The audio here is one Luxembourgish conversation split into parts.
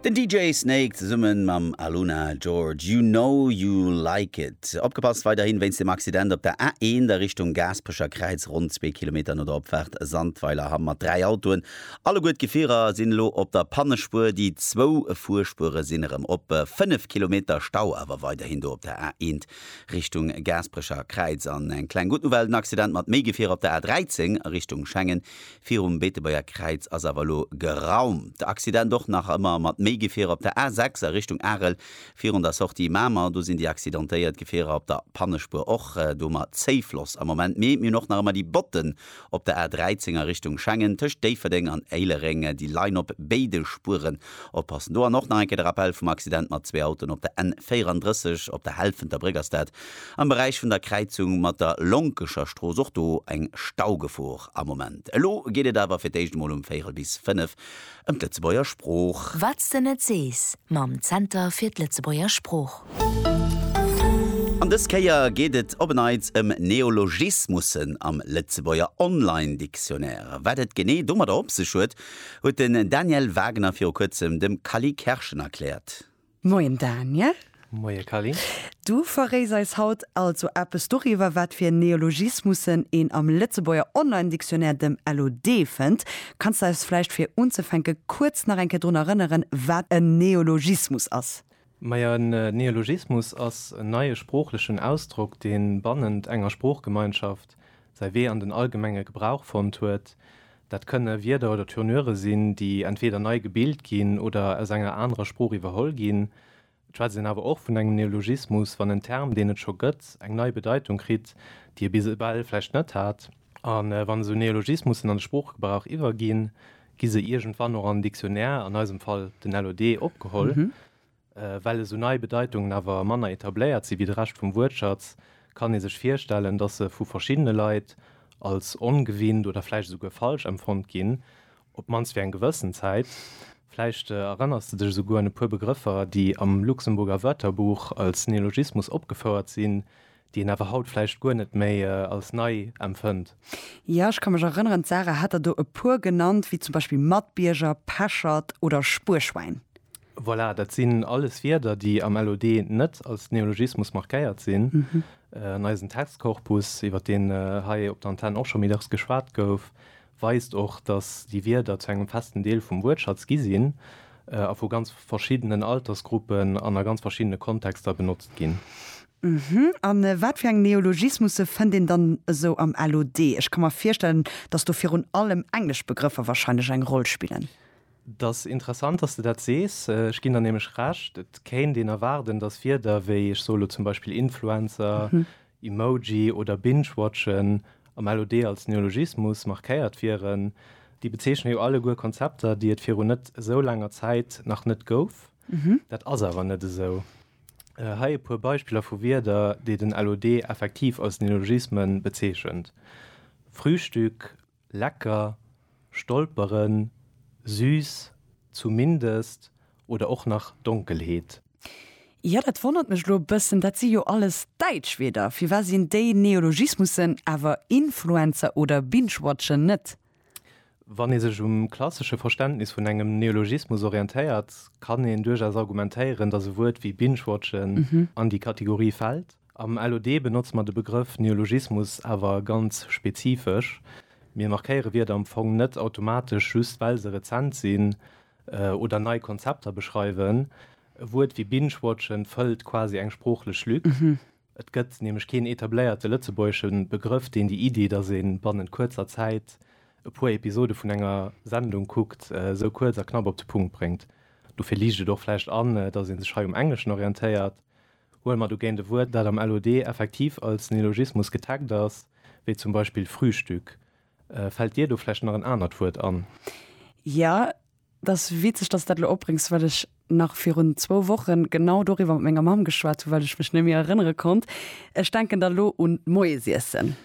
Den DJ Snake zesummen mam Aluna George, You Know You Like It. Opgepasst, weiderhin wéinst dem Accident op der A1 a Richtung Gaasperecher Kräiz, ronn zwee Kilometer no der Opfaart Sandweiler Hamm mat dräi Autoen. Alleguer d'Gefierer sinn elo op der Pannespuer, déi zwou Fuerspuere sinn erëm op. Fënnef Kilometer Stau awer weiderhin do op der A1 Richtung Gaasperecher Kräiz. An eng kleng gutt Nouvelle, den Accident mat méi Gefierer op der A13 a Richtung Schengen Virum Beetebuerger Kräiz ass awer elo geraumt. De Accident och nach ëmmer mat méi Gefierer op der A6 a Richtung Arel virun der Sortie Mamer. Do sinn déi accidentéiert Gefierer op der Pannespuer och do. Ma Zéifloss am Moment mee. Mir hunn och nach ëmmer déi Botten op der A13 a Richtung Schengen tëscht Déifferdeng an Éilereng. Déi leien op béide Spueren Oppassen! Do an och nach eng Kéier de Rappell vum Accident mat zwee Autoen op der N 34 op der Helfenter Bréck ass dat am Beräich vun der Kräizung mat der Lonkescher Strooss. Och do eng Staugefor am Moment. Elo geet et awer fir d'éischt emol um Véierel bis fënnef ëm d'Lëtzebuerger Sprooch. Wat s de net sees mam Zenter fir d'Lëtzebuerger Sprooch. An dës Kéier geet et op en Neits ëm Neologismussen am Lëtzebuerger Online-Dictionnaire. Wat et genee domadder op sech huet, Huet den Daniel Wagner viru kuerzem dem Kally Kerschen erkläert. Moien Daniel. Moie Kally. Du verréis eis haut also eppes doriwwer, wat fir Neologismussen een am Lëtzebuerger Online-Dictionnaire, dem LOD, fënnt. Kanns de eis vläicht fir unzefänke kuerz nach eng Kéier drun erënneren, wat en Neologismus ass? Majo, en Neologismus ass en neie sproochlechen Ausdrock, dee bannent enger Sproochgemeinschaft säi Wee an den allgemenge Gebrauch fonnt huet. Dat kënne Wierder oder Tournure sinn, déi entweeder nei gebilt ginn oder aus enger anerer Sprooch iwwerholl ginn. Et schwätzt een awer och vun engem Neologismus, wann en Term, deen et scho gëtt, eng nei Bedeitung kritt, déi e bis ewell vläicht net hat. A wann esou Neologismussen an de Sproochgebrauch iwwerginn, Gi se iergendwann och am Dictionnaire, an eisem Fall den LOD, opgeholl. Well esou nei Bedeitungen awer manner etabléiert si wéi de Rescht vum Wuertschatz, kann ee sech virstellen, datt se vu verschiddene Leit als ongewinnt oder vläicht esouguer falsch empfonnt ginn, op d'mannst fir eng gewëssen Zäit. Vläicht erënners de dech esouguer un e puer Begrëffer, déi am Luxemburger Wörterbuch als Neologismus opgefouert sinn, déi een awer haut vläicht guer net méi als nei empfënnt. Jo, ech ka mech erënneren, d'Sarah hat der do e puer genannt, wéi zum Beispill Matbierger, Peschert oder Spuerschwäin. Voilà, dat sinn alles Wierder, déi am LOD net als Neologismus markéiert sinn. An eisen Textkorpus, iwwert deen hei op der Antenn och scho méi dacks geschwat gouf, weist och, datt déi Wierder zu engem festen Deel vum Wuertschatz gi sinn a vu ganz verschiddenen Altersgruppen an a ganz verschiddene Kontexter benotzt ginn. A wat fir eng Neologismusse fënnt een dann esou am LOD? Ech ka mer virstellen, datt do virun allem englesch Begrëffer warscheinlech eng Roll spillen. Et ass interessant, datt s de dat sees. Ech ginn der nämlech Recht. Et kéint een erwaarden, datt Wierder wéi, ech soe lo zum Beispill Influencer, Emoji oder Binge-Watchen, AMLOD als Neologismus, markéiert wieren. Déi bezeechne jo alleguer Konzepter, déi et viru net esou laanger Zäit nach net gouf. Dat ass awer net esou. Hei e puer Beispiller vu Wierder, déi den LOD effektiv als Neologisme bezeechent, Frühstück, Lecker, stolperen, süß, zumindest oder och nach Donkelheet. Jo, dat wonnert mech elo e bëssen, dat si jo alles däitsch Wierder. Firwat sinn déi Neologismussen awer Influencer oder Binge-Watchen net? Wann ee sech um klassesche Verständnis vun engem Neologismus orientéiert, kann een duerchaus argumentéieren, datt e Wuert wéi Binge-Watchen an déi Kategorie fält. Am LOD benotze mer de Begrëff Neologismus awer ganz spezifesch. Mir markéiere Wierder am Fong net automatesch just well se rezent sinn oder nei Konzepter beschreiwen. E Wuert wéi Binge-watchen fëllt quasi eng sproochlech Lück. Et gëtt nämlech keen etabléierte lëtzebuergesche Begrëff, deen déi Iddi, datt ee bannent kuerzer Zäit e puer Episode vun enger Sendung kuckt, sou kuerz a knapp op de Punkt bréngt. Dofir liicht et och vläicht an, datt ee sech hei um Engleschen orientéiert. Huele mer dogéint e Wuert, dat am LOD effektiv als Neologismus getaggt ass, wéi zum Beispill Frühstück. Fält dir do vläicht nach en anert Wuert an? Jo, et ass witzeg, dass s de dat elo opbréngs, well ech nach virun zwou Wochen genau doriwwer mat menger Mamm geschwat hunn, well ech mech net méi erënnere konnt. Ech denken da lo un d'Moiesiessen.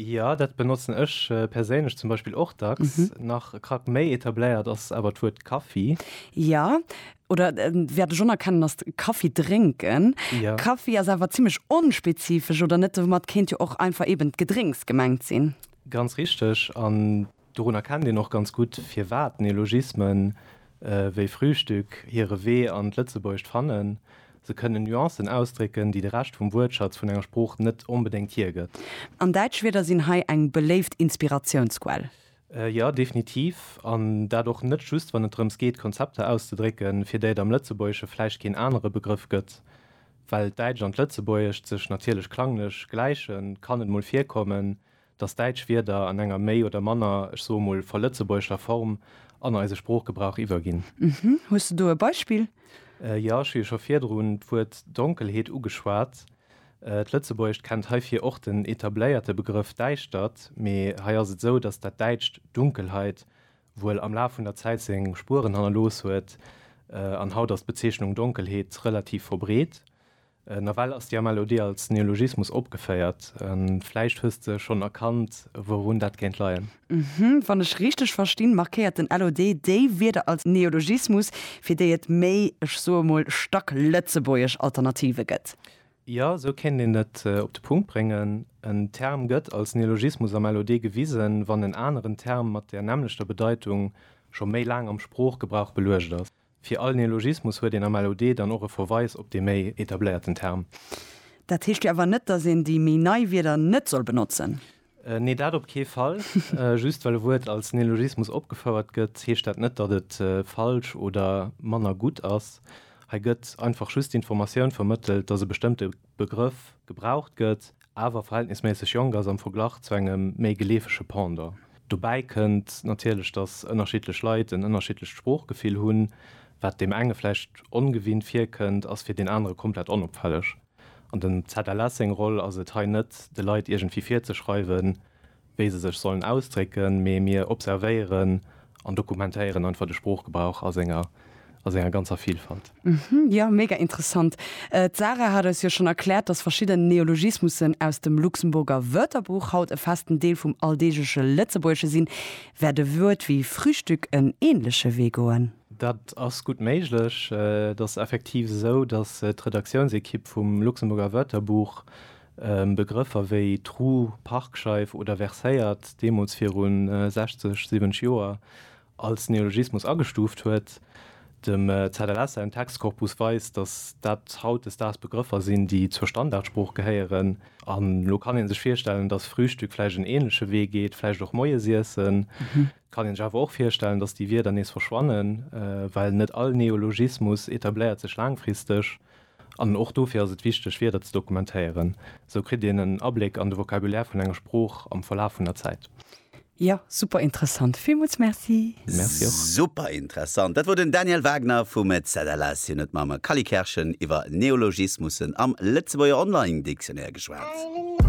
Jo, dat benotzen ech perséinlech zum Beispill och dacks. Nach e Krack méi etabléiert ass awer d'Wuert Kaffi. Jo, oder wäert ech onerkennen, ass Kaffi drénken. Jo. Kaffi ass awer zimmlech onspezifesch, oder net? Domat kéint jo och einfach eeben d'Gedrénks gemengt sinn. Ganz richteg. An Dorun erkennt een och ganz gutt, firwat Neologismen wéi Frühstück hire Wee an d'Lëtzebuergescht fannen, Se kënnen Nuancen ausdrécken, déi de Rescht vum Wuertschatz vun enger Sprooch net onbedéngt hiergëtt. An däitsch Wierder sinn hei eng beléift Inspiratiounsquell. Jo, definitiv. An dat och net just, wann et drëms geet, Konzepter auszedrécken, fir déi et am Lëtzebuergesche vläicht keen anere Begrëff gëtt. Well d'Däitscht an d'Lëtzebuergescht sech natierlech klanglech gläichen, kann et mol virkommen, dass däitsch Wierder an enger méi oder manner, ech soe mol, verlëtzebuergeschter Form an eise Sproochgebrauch iwwerginn. Hm, hues de do e Beispill? Jo, ech hu jo scho virdrun d'Wuert Donkelheet ugeschwat. D'Lëtzebuergescht kennt heifir och den etabléierte Begrëff Däischtert, mee hei ass et esou, dass dat däitscht Dunkelheit wuel am Laf vun der Zäit seng Spueren hannerlooss huet an haut ass d'Bezeechnung Donkelheet relativ verbreet. Nawell ass déi MLOD als Neologismus opgeféiert. Vläicht hues de schonn erkannt, wourun dat kéint leien? Uhhm. Wann ech richteg verstinn, markéiert den LOD déi Wierder als Neologismus, fir déi et méi, ech soe mol, stacklëtzebuergesch Alternative gëtt? Jo, esou kéint een et op de Punkt bréngen. En Term gëtt als Neologismus am LOD gewisen, wann en aneren Term mat där nämmlechter Bedeitung scho méi laang am Sproochgebrauch beluecht ass. Fir all Neologismus huet een am LOD dann och e Verweis op dee méi etabléierten Term. Dat heescht jo awer net, dass een déi méi nei Wierder net soll benotzen? Nee, dat op kee Fall. Just well e Wuert als Neologismus opgefouert gëtt, heescht dat net, datt et falsch oder manner gutt ass. Hei gëtt einfach just d'Informatioun vermëttelt, dass e bestëmmte Begrëff gebraucht gëtt, awer verhältnisméisseg jonk ass am Verglach zu engem méi geleefege Pendant. Dobäi kënnt natierlech, datt ënnerschiddlech Leit en ënnerschiddlecht Sproochgefill hunn. Wat deem enge vläicht ongewinnt virkënnt, ass fir deen anere komplett onopfälleg. An dem ZLS seng Roll ass et hei net, de Leit iergendwéi virzeschreiwen, wéi se sech sollen ausdrécken, mee mir observéieren an dokumentéieren einfach de Sproochgebrauch a senger, a senger ganzer Vilfalt. Jo, mega interessant. D'Sarah hat eis jo schonn erkläert, dass verschidden Neologismussen aus dem Luxemburger Wörterbuch haut e festen Deel vum alldeegleche Lëtzebuergesche sinn. Wäert e Wuert wéi Frühstück en änleche Wee goen? Dat ass gutt méiglech. Et ass effektiv esou, dass d'Redaktiounsekipp vum Luxemburger Wörterbuch Begrëffer wéi Trou, Parkscheif oder Verséiert deemools viru 60, 70 Joer als Neologismus agestuuft huet. Dem ZLS säin Textkorpus weist, datt dat hautdesdaags Begrëffer sinn, déi zur Standardsprooch gehéieren. An elo kann ee sech virstellen, datt Frühstück vläicht en änleche Wee geet, vläicht och Moiesiessen. Et kann een sech awer och virstellen, datt déi Wierder nees verschwannen, well net all Neologismus etabléiert sech laangfristeg. An och dofir ass et wichteg, Wierder ze dokumentéieren. Esou kritt een en Abléck an de Vocabulaire vun enger Sprooch am Verlaf vun der Zäit. Jo, super interessant. Villmools Merci! Merci och! Super interessant. Dat wor den Daniel Wagner vum ZLS. Hien huet mam Kally Kerschen iwwer Neologismussen am Lëtzebuerger Online Dictionnaire geschwat.